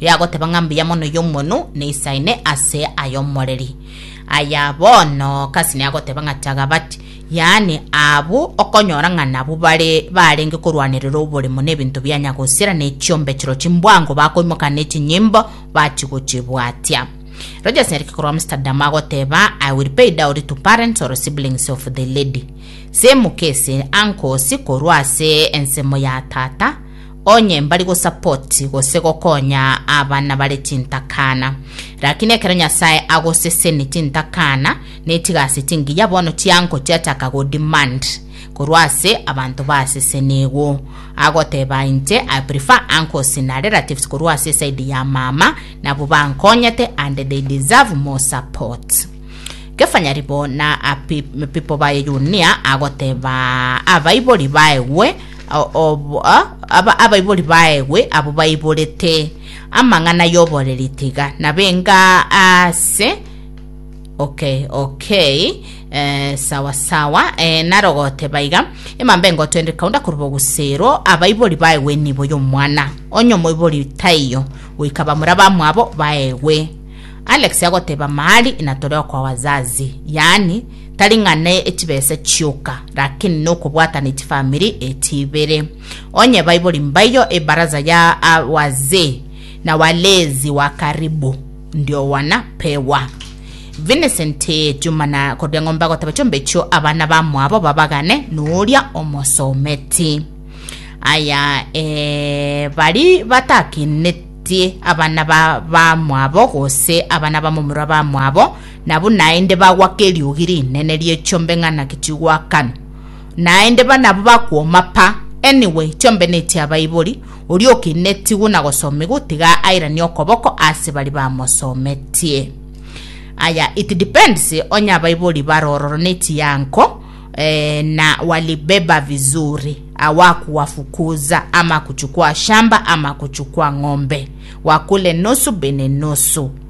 Yagoteba ng'a mbuya mono y'omonu neisaine ase ay'omoreri. Aya bono Kasi nagoteba ng'a chagabati, yaani abwo okonyora ng'a nabwo bare barenge korwanerera oboremo n'ebinto bia nyagosira ne chiombe chiro chimbwango bakoimoka ne chinyimbo bachigochibwatia. Rogers Nyariki korwa Amsterdam agoteba I will pay dowry to parents or siblings of the lady. Same case, uncles korwa ase ensemo ya tata, Onye mbari gosapoti gose gokonya abana bare chintakana. Rakini ekero Nyasae agoseseni chintakana, netiga ase chingiya bono chiango chiachaka go demand korwa ase abanto basesenigwu. Agoteba inche I prefer uncles na relatives korwa ase side ya mama nabwo bankonyete and they deserve more support. Kefanyaribo na a pe- people baye Yunia agoteba abaibori baegwe O- ob- a- aba- abaibori baegwe abo baiborete amang'ana y'oboreri tiga nabenga ase okay okay eh, sawa sawa eh, narogote baiga emamba engotwende kaunda koruba ogusero abaibori baegwe nibo y'omwana onye omoibori taiyo goika bamura bamwabo baegwe alex agoteba mahali inatore okwa wazazi yaani Tari ng'a ne echibesa chioka, lakini nokobwatana echifamiri echi ibere. Onye Baibori mbaiyo, ebaraza ya Awazee na Walezi wa Karibu ndiowana pewa. Vincent Juma na Kordia Ng'ombe agoteba chombe echio abana bamwabo babagane noria omosometi. Aya eh, bari batakenetie abana ba bamwabo gose abana bamomura bamwabo na bunaende bagoaka eriogi rinene ri'echombe ng'a naki chigoakanwa. Naende banabo bakwoma pa. Anyway, chombe nechia Baibori, oria okeina etigwe na gosoma igwe tiga airanie okoboko ase baria bamosometie. Aya, it depends onye abaibori bare ororo ne chianko eh, na walibeba vizuri awakuwafukuza ama kuchukua shamba ama kuchukua ng'ombe wakule nusu bene nusu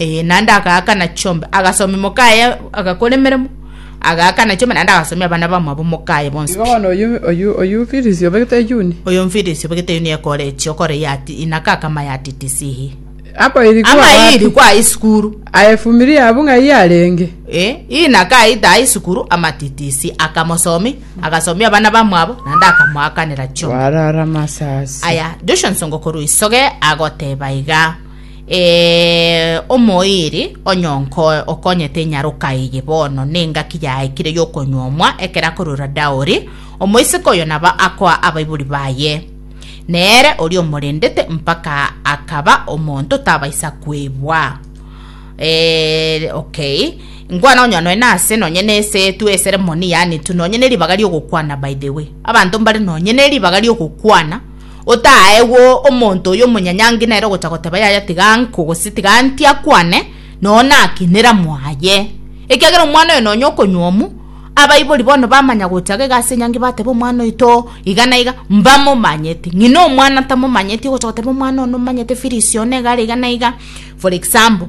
Ee, naende agaakana chiombe, agasomia omokaye agakora emeremo, agaakana chiombe, naende agasomia abana bamwabo omokaye bonsi Igo pi. bono oyio oyio oyio Firisi obegete eyuni. Oyo Mfirisi obegete eyuni ekore echi, okore ya ati, inaka akama ya titisihi. Apa iri kwa Ama iri wapi? kwa isukuru. Aye fumirie abwo ng'a iye arenge. Eh, inaka aita aa isukuru ama titisi, akamosomi, agasomia abana bamwabo, naende akamoakanera chiombe. Warara masasi. Aya, Joshua Nsongo korwa isoge agoteba iga. Ee, omoiri onyonkoe okonyete enyaroka eye bono nengaki yaikire y'okonyuomwa ekero akorora daori, omoiseke oyo naba akoa abaibori baye. Nere oria omorendete mpaka akaba omonto tabaisa kwebwa. Eh, okay. Ngwa nonya noe nase nonye nese tu ceremony yani tu nonye ne ribaga riogokwana by the way. Abanto mbare nonye ne ribaga riogokwana Otaegwe omonto oyio omonyanyangi nere ogocha goteba yaya tiga anko gose tiga anti akwane, noo naki neramu aye. Ekiagera omwana oyo nonya okonywomu, abaibori bono bamanya gocha iga ase enyangi bateba omwana oyo too iga na iga, mbamomanyeti. Ng'ina omwana tamomanyeti ogocha goteba omwana one omanyete fees one igare iga na iga for example.